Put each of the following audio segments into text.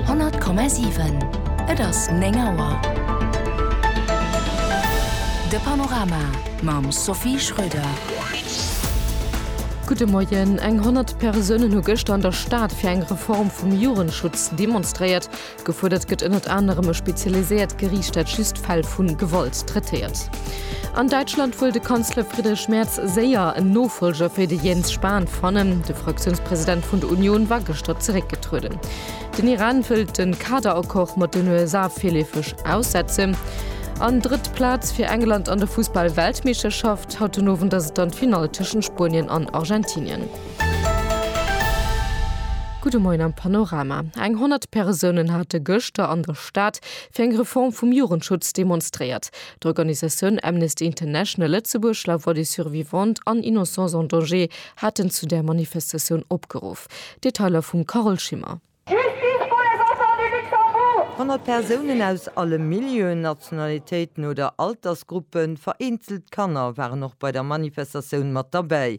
100,7 Et ass 9 Auer. De Panorama mam Sophie Schröder. Gudde Moien. Eng 100 Persounen hu gëschter an der Stad fir eng Reform vum Jugendschutz demonstréiert. Gefuerdert gëtt ënnert anerem e spezialiséiert Geriicht, dat just Fäll vu Gewalt traitéiert. An Däitschland wëll de Kanzler Friedrich Merz séier en Nofollger fir de Jens Spahn fannen. De Fraktiounspresident vun der Unioun war gëschter zeréckgetrueden. Den Iran wëllt de Kaderaccord mat den USA virleefeg aussetzen. An drëtt Plaz fir England an der Fussball-Weltmeeschterschaft. Haut den Owend ass et dann d'Finall tëschent Spuenien an Argentinien. Gudde Moien am Panorama. Eng 100 Persounen hate gëschter an der Stad fir eng Reform vum Jugendschutz demonstréiert. D'Organisatioun Amnesty International Lëtzebuerg, La Voix des Survivantes an Innocence en Danger haten zu där Manifestatioun opgeruff. Detailer vum Carole Schimmer. Justice pour les enfants du Luxembourg! 100 Persounen aus alle Milieuen, Nationalitéiten oder Altersgruppen, vereenzelt Kanner waren och bei der Manifestatioun mat derbäi.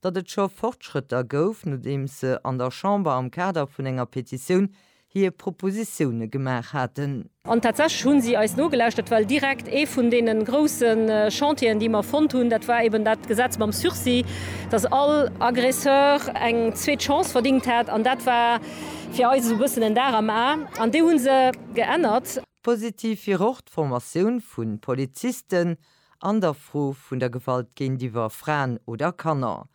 datt et scho Fortschrëtter gouf, nodeems se an der Chamber am Kader vun enger Petitioun hir Propositioune gemaach haten. An tatsächlech hu si eis nogelauschtert, well direkt ee vun deene grousse Chantieren, déi mer fonnt hunn, dat war eben dat Gesetz mam Sursis, datt all Aggresseur eng zweet Chance verdingt hätt. An dat war fir eis esou e bëssen en Dar am A. An déi hu se geännert. Positiv wier och d'Formatioun vu Polizisten, an der Fro vun der Gewalt géintiwwer Fraen oder Kanner.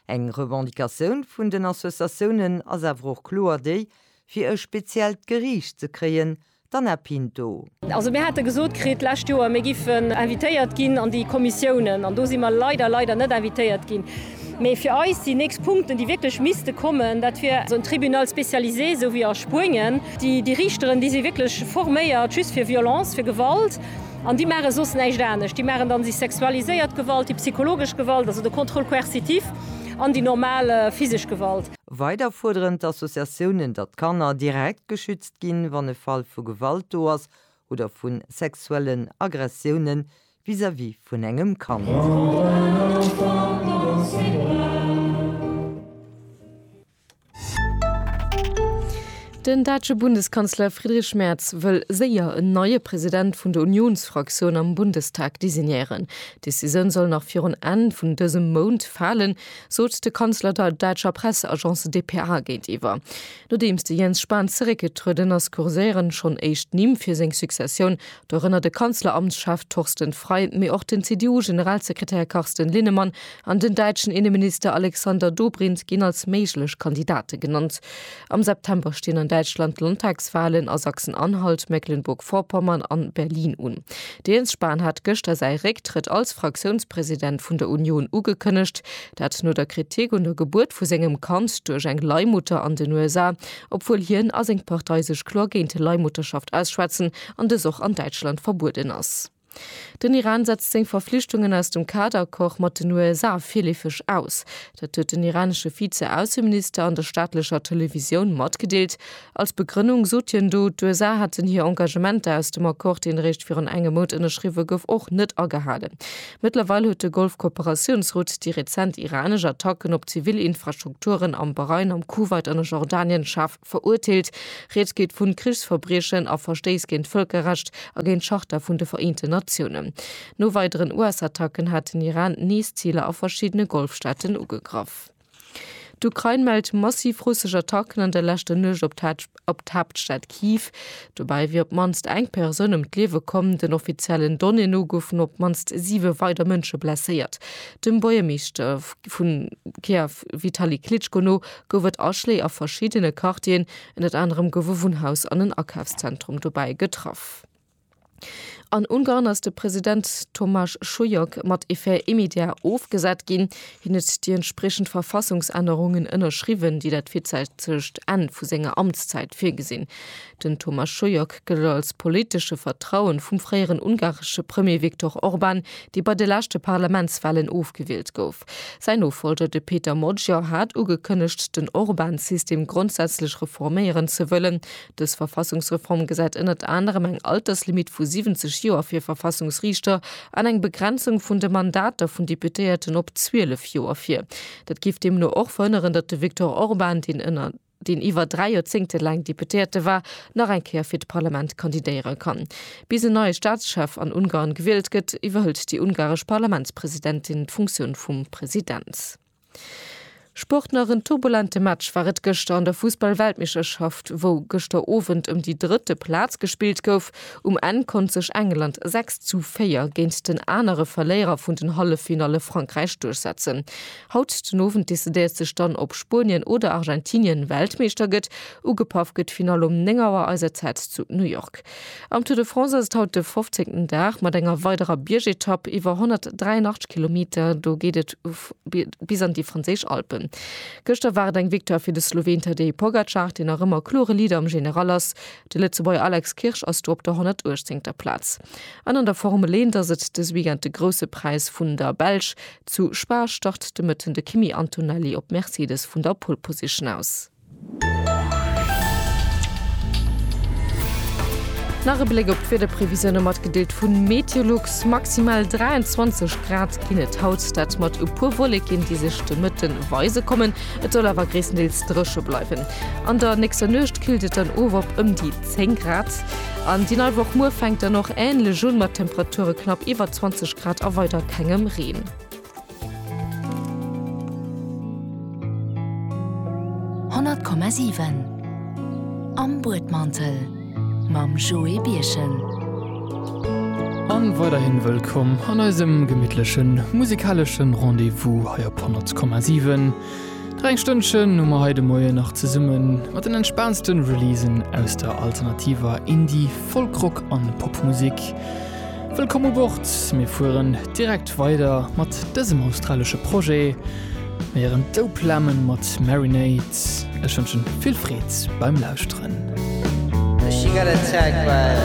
Eng Revendicatioun vun den Associatiounen ass awer och kloer déi, fir e speziellt Geriicht ze kréien, d'Anna Pinto. Also mir hate gesot kritt d'lescht Joer, mir géifen invitéiert ginn an déi Kommissiounen, an do si mer leider, leider net invitéiert ginn. Mee fir eis déi nächst Punkten, déi wierklech misste kommen, dat wier esou en Tribunal spécialisé, esou wéi a Spuenien. Déi Riichteren, déi si wierklech forméiert just fir Violence, fir Gewalt. An déi maache soss näischt anescht. Déi maachen dann déi sexualiséiert Gewalt, déi psychologesch Gewalt, also de Contrôle coercitif, an déi normal physesch Gewalt. Weider fuerderen d'Associatiounen, datt d'Kanner direkt geschützt ginn, wann e Fall vu Gewalt do ass oder vu sexuellen Aggressioune vis-à-vis vun engem Kand. Den däitsche Bundeskanzler Friedrich Merz wëll séier en neie President vun der Unionsfraktioun am Bundestag designéieren. D'Decisioun soll nach virun Enn vun dësem Mount falen, sot de Kanzler der däitscher Presseagence dpa géintiwwer. Nodeems de Jens Spahn zeréckgetrueden ass, kurséieren schonn éischt Nimm fir seng Successioun, dorënner de Kanzleramtschef Torsten Frei, mee och den CDU-Generalsekretär Carsten Linnemann an den däitschen Inneminister Alexander Dobrindt ginn als méiglech Kandidate genannt. Am September stinn an Däitschland d'Landtagswahlen a Sachsen-Anhalt, Mecklenburg-Vorpommern an Berlin un. De Jens Spahn hat gëschter säi Récktrëtt als Fraktiounspresident vun der Union ugekënnegt, dat no der Kritik un der Gebuert vu sengem Kand duerch eng Leihmutter an den USA, obwuel hien a seng Partei sech kloer géint Leihmutterschaft ausschwätzen. an dës och an Däitschland verbueden ass. Den Iran setzt seng Verflichtungen aus dem Kaad-Accord mat den USA virleefeg aus. Dat huet den iranesche Vize-Ausseminister an der staatlecher Televisioun matgedeelt. Als Begrënnung sot hien do, d'USA hätten hir Engagementer aus dem Accord, deen eréischt virun engem Mount ënnerschriwwe gouf, och net agehalen. Mëttlerweil huet de Golf-Kooperatiounsrot déi rezent iranesch Attacken op zivil Infrastrukturen am Bahrain, am Kuwait an a Jordanien schaarf. Verurteelt. Rieds geet vun Krichsverbriechen a Verstéiss géint d'Vëlkerrecht a géint d'Charta vun de Vereenten Natiounen. No weideren US-Attacken hat den Iran nees Ziler a verschiddene Golfstaaten ugegraff. D'Ukrain mellt massiv russesch Attacken an der leschter Nuecht op d'Haaptstad Kyiv. Dobäi wier op d'mannst eng Persoun ëm d'Liewe komm. Den offiziellen Donnéeë no goufen op d'mannst siwe weider Mënsche blesséiert. Dem Buergermeeschter vu Kiew Vitali Klitschko no gouf et Aschléi a verschiddene Quartieren, ënnert anerem gouf e Wunnhaus an en Akafszentrum dobäi getraff. An Ungarn ass de President Tomasz Sujok mat effet immédiat ofgesat ginn. Hien huet déi entspriechend Verfassungsännerungen ënnerschriwwen, déi dat virzäitegt Enn vu senger Amtszäit virgesinn. Den Thomas Schuyoc gëllt als politesche Vertrauen vum fréieren ungaresche Premier Viktor Orban, dee bei de leschte Parlamentswalen ofgewielt gouf. Säin Nofollger, de Péter Magyar hat ugekënnegt, den Orban-System grondsätzlech reforméieren ze wëllen. Dës Verfassungsreform gesäit ënnert anerem eng Alterslimitt vu 70 Joer fir Verfassungsriichter an eng Begrenzung vun de Mandater vun Deputéierten op 12 Joer vir. Dat géif deemno och verhënneren, datt de Viktor Orban, deen ënnert. deen iwwer dräi Joerzéngte laang Deputéierte war, nach eng Kéier fir d'Parlament kandidéiere kann. Bis en neie Staatschef an Ungarn gewielt gëtt, iwwerhëlt déi ungaresch Parlamentspresidentin d'Funktioun vum President. Sport nach, En turbulente Match war et gëschter an der Fussball-Weltmeeschterschaft, wou gëschter Owend ëm déi drëtte Plaz gespillt gouf. Um Enn konnt sech England 6 zu 4 géint den anere Verléierer vun den Halleffinalle Frankräich duerchsetzen. Haut den Owend decidéiert sech dann, ob Spuenien oder Argentinien Weltmeeschter gëtt. Ugepaff gëtt d'Finall um 9 Auer eiser Zäit zu New York. Am Tour de France ass et haut de fofzéngten Dag mat enger weiderer Biergetapp iwwer 183 Kilometer. Do geet et bis an déi franséisch Alpen. Gëschter war et eng Victoire fir de Sloween Tadej Pogacar, deen nach ëmmer klore Leader am General ass. De Lëtzebuerger Alex Kirsch ass do op der 118. Plaz. An an der Formel Eent ass et dës Weekend de Grousse Präis vun der Belsch. Zu Spa start de Mëtten de Kimi Antonelli op Mercedes vun der Pole Position aus. Nach e Bléck op d'Wiederprevisioune matgedeelt vu Meteolux. Maximal 23 Grad ginn et haut, dat mat e puer Wolleken, déi sech de Mëtten weise kommen. Et soll awer gréisstendeels dréche bleiwen. An der nächster Nuecht killt et dann of op ëm déi 10 Grad. An déi nei Woch muer fänkt dann och änlech un, mat Temperature knapp iwwer 20 Grad a weider kengem Reen. 100,7 Am Buedmantel mam Joé Birchen. An weiderhin wëllkomm an eisem gemittlechen musikaleschen Rendez-vous hei op 100,7. Nach eng Stënnchen hu mer hei de Moien nach zesumme mat den entspaanste Releasen aus der alternativer Indie-, Folk-Rock an Popmusek. Wëllkomm u Bord, mir fueren direkt weider mat dësem australesche Projet. Mir héieren Dope Lemon mat Marinade. Ech wënschen vill Freed beim Lauschteren. She got attacked by